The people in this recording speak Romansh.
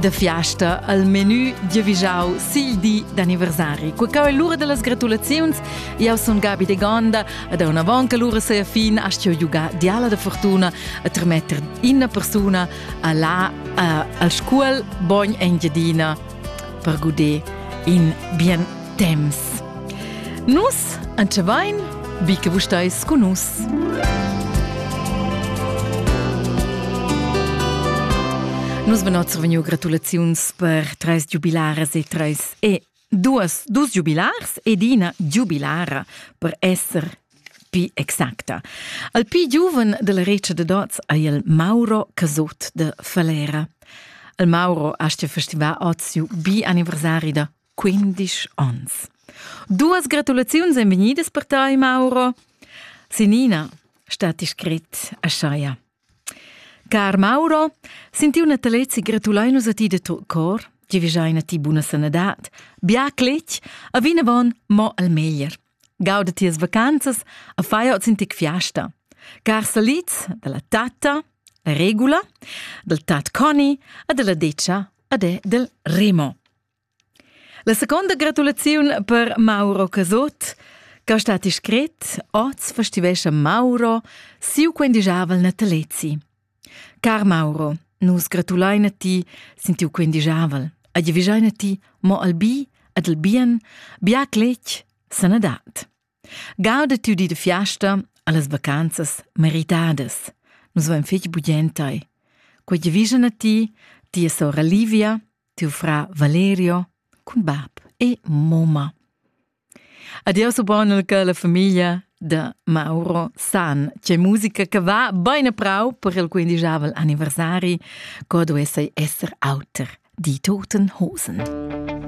Da fiasta al menü giavischau sil di d'anniversari. Qua cau è l'ura dellas gratulaziuns. Jau sun Gabi de Gonda ed una avon che l'ura sei fin astio giugar diala da fortuna a trametter ina persuna a là al scuol bogn Engiadina per guder in bien temps. Nus antschevain vi che vus stais con nus. Nus ben oz vegniu gratulaziuns per treis giubilaras e treis e duas dus giubilars ed ina giubilara per esser pi exacta. Al pi giuven della regia de Dots ei il Mauro Casot de Falera. Il Mauro ha sta festival oz siu bi anniversari da quindisch ons. Duas gratulaziuns ein vegnidas per tai, Mauro. Sinina, stati scrit a Schaia. Car Mauro, sinti una talezzi gratulai nus a ti de to cor, tgi vijaina ti buna sanadad, bia cletg, a vinavon mo al meglier. Gauda ti as vacanzas, a fai ot sintic fiasta. Car saliz dalla tatta, la regula, dal tat Conny, a della decia, a de del Remo. La seconda gratulaziun per Mauro Casot, che sta discret, oz festivescha Mauro siu quendigiavel natalezi. Car Mauro, nus gratulain a ti sin tiu quendigiavel. Ad vigiain a ti mo al bi ed al bien, bia cletg, sanadad. Gauda tu di de fiasta allas vacanzas meritadas. Nus vain fetg bugentai. Quei vision a ti, tia sora Livia, tiu fra Valerio cun bab e moma. Adios ubognel che la famiglia da Mauro san. C'è musica che va bene prau per il quindigiavel anniversari, co duesse esser auter di toten hosen.